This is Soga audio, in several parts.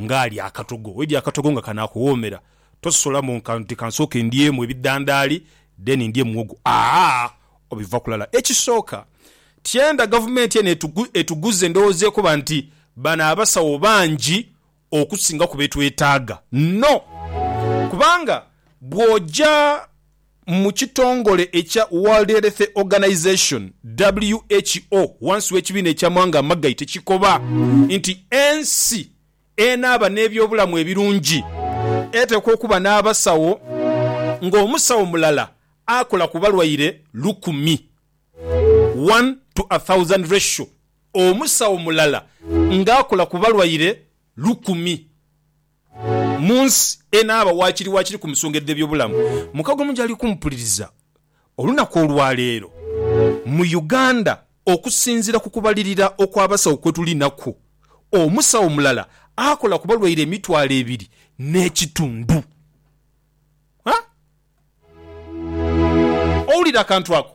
ng'alya akatogo. Bw'oidya akatogo nga kanaakuwoomera, tososola mbu nti kansooke ndyemu ebidhandaali then ndye muwogo. Aah! Obivaku lala. Ekisooka, tyenda gavumenti eno etuguze endowooza ekoba nti bano abasawo bangi okusingaku be twetaaga. No! Kubanga bw'oja. mu kitongole ekya World Health Organization, who, wansi w'ekibiina eky'amawanga amagaite kikoba nti ensi enaaba n'ebyobulamu ebirungi eteekwa okuba n'abasawo ng'omusawo mulala akola ku balwaire lukumi, one to a thousand ratio, omusawo mulala ng'akola ku balwaire lukumi. Mu nsi enaaba waakiri waakiri ku nsonga edh'ebyobulamu, mukago mungi ali kumpuliriza olunaku olwaleero. Mu Uganda, okusinziira ku kubalirira okw'abasawo kwe tulinaku, omusawo mulala akola ku balwaire emitwalo ebiri n'ekitundu. Ha! Owulira akantu ako?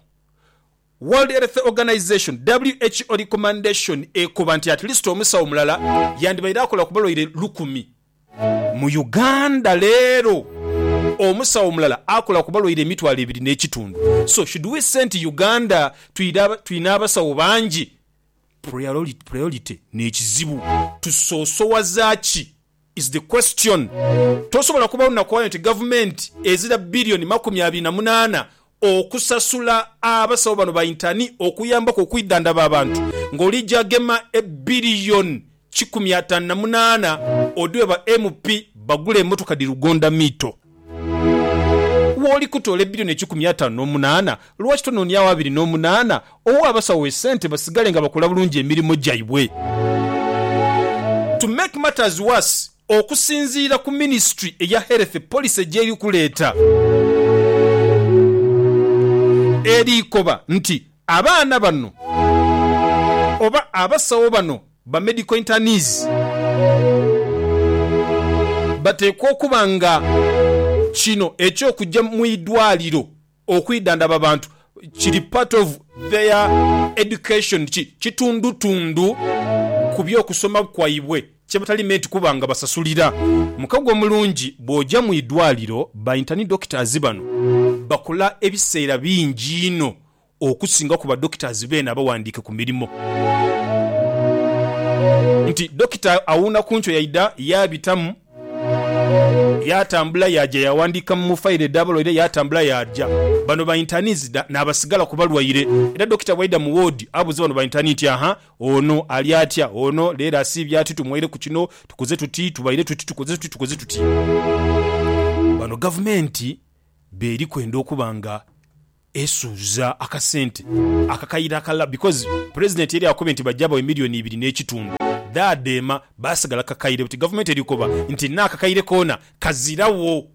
World Health Organization, WHO, recommendation ekoba nti at least omusawo mulala yandibaire akola ku balwaire lukumi. Mu Uganda leero omusawo mulala akola ku balwaire emitwalo ebiri n'ekitundu. So should we say nti Uganda tulina abasawo bangi? Priority n'ekizibu. Tusoosowaza ki is the question. Tosobola kuba onakwayo nti gavumenti ezira billion makumi abiri na munaana okusasula abasawo bano ba intani okuyambaku okwidhandhaba abantu nga olija gema e billion kikumi ataanu na munaana odhwe ba MP bagule emotoka dhi lugonda miito. Wooli kutoola ebilioni ekikumi ataanu n'omunaana, lwaki tonooniagho abiri n'omunaana, owe abasawo esente basigale nga bakola bulungi emirimo gyaibwe? To make matters worse, okusinziira ku minisitule eya Health policy gyeri kuleeta, eri koba nti abaana bano oba abasawo bano Ba medical internees bateekwa okuba nga kino eky'okujja mu idwaaliro okwidhandhaba abantu kiri part of their education, ki kitundutundu ku by'okusoma kwaibwe kye batali meeti kuba nga basasulira. Mukago omulungi bw'oja mu idwaaliro, ba intern doctors bano bakola ebiseera bingi inho okusinga ku badokitazi beene abawandiike ku mirimo nti, Dokita awuuna ku nkyo yaidha yaabitamu, yaatambula yaaja yaawandiika mu failo edh'abalwaire, yaatambula yaaja. Bano ba intaani nzidha naabasigala ku balwaire. Era dokita bw'aidha mu woodi abuuze bano ba intaani nti, Aha, ono ali atya? Ono leero asiibye ati? Tumwaireku kino, tukoze tuti, tubaire tuti, tukoze tuti, tukoze tuti. Bano Gavumenti b'eri kwenda okuba nga Esuuza akasente akakaire akalala because president yali akubye nti bajja bawe million ibiri nekitundu dhaadheema baasigala kakaire buti gavumenti erikoba nti naakakaire koona kazirawo.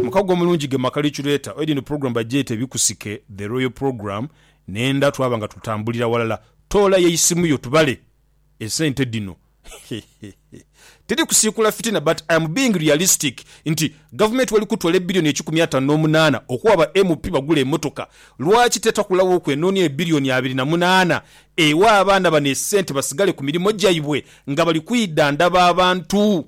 Mukago omulungi ge maka Licureeta oil eno program bagyete bikusike the royal program nenda twaba nga tutambulira walala toola yeisimu yo tubale. esente dhino tiri kusiikula fitina but I am being realistic nti gavumenti wali kutwala ebilioni ekikumi ataanu n'omunaana okuwa ba MP bagule emotoka, lwaki tetakulawo okwenonia ebilioni abiri na munaana ewe abaana bano esente basigale ku mirimo gyaibwe nga bali kwidhandhaba abantu?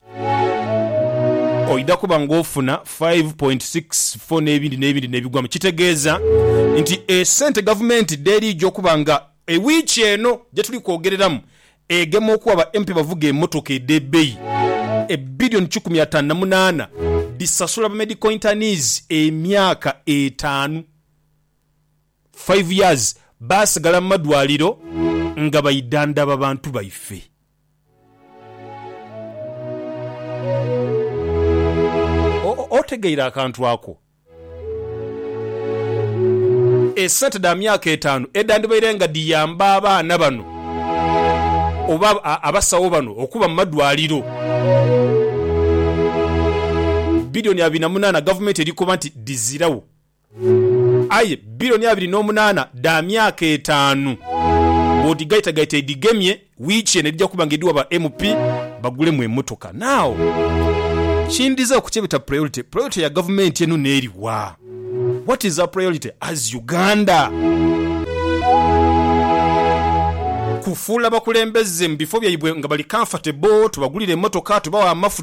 oidha kuba ng'ofuna five point six four n'ebindi n'ebindi n'ebigwamu. Kitegeeza nti esente gavumenti dh'eri eija okuba nga e wiiki eno gye tuli kwogereramu egema okuwa ba MP abavuga emmotoka edh'ebbeyi e billion kikumi ataanu na munaana dhisasula ba medical internees emyaka etaanu, five years, baasigala mu madwaliro nga baidhandhaba bantu baife. Otegeire akantu ako? Esente dha myaka etaanu edhandibaire nga dhiyamba abaana bano oba abasawo bano okuba mu madwaliro, bilioni abiri na munaana gavumenti eri koba nti dhiziragho Aye billion abiri n'omunaana dha myaka etaanu bw'odhigaitagaita edhigemye, wiiki eno edhija kuba nga edhiwa ba MP bagulemu emotoka. Now, kindhiza ku kyebeta priority, priority ya gavumenti eno n'eri wa? What is our priority as Uganda? Kufuula bakulembeze mu bifo byaibwe nga bali comfortable, tubagulire emotoka, tubawe amafuta,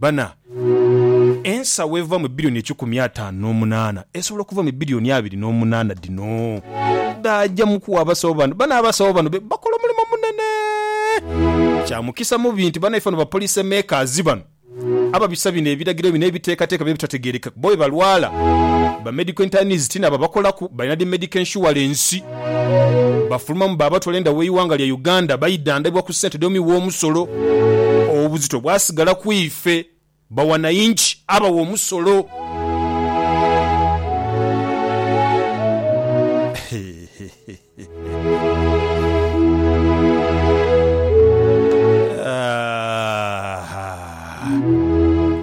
Bana, ensawo eva mu bilioni ekikumi ataanu n'omunaana esobola okuva mu bilioni abiri n'omunaana dhino dhaaja mu kuwa abasawo bano. Bana, abasawo bano be bakola omulimo munene. Kya mukisa mubi nti banaife bano bapolice makers bano ababisa bino ebiragiro bino ebiteekateeka bye bitategeerekeka bo bwe balwala. Ba medical internists ti nabo abakolaku, balina dhi medical insurance. Bafulumamu baabatwala enda w'eighanga lya Uganda baidhandhaibwa ku sente dh'omi w'omusolo. Obuzito bwasigala ku ife bawanainchi abawa omusolo.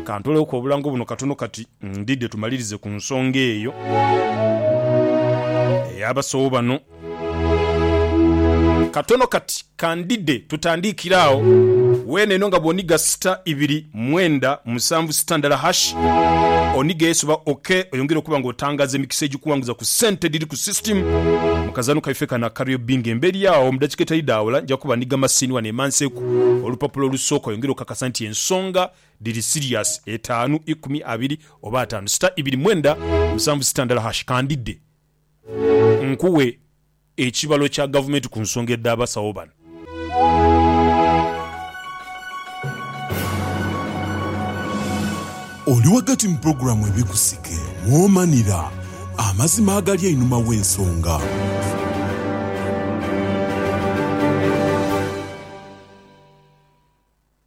Ka ntoloku obulango buno katono kati. Ndidhe tumalirize ku nsonga eyo ey'abasawo bano katono kati. Ka ndidhe tutandiikire agho weene eno nga bw'onigha sita ibiri mwenda musanvu sita ndala hash, onighe Yesu oba OK oyongere okuba nga otangaaza emikisa egikuwanguza ku sente edhiri ku system mu kazaano kaife kano aka Real Bingo. Emberi agho mu dakika edhitali dha wala nja kuba nigha masiini wano emanseku olupapula olusooka oyongere okakasa nti ensonga Dhiri serious etaanu ikumi abiri oba ataanu sita ibiri mwenda musanvu sita ndala hash kandidhe nkuwe ekibalo kya gavumenti ku nsonga edha basawo bano. Oli ghagati mu pulogulaamu Ebikusike mw'omanira amazima agali einhuma w'ensonga.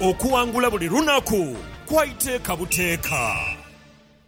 Okuwangula buli lunaku kwa iteeka buteeka.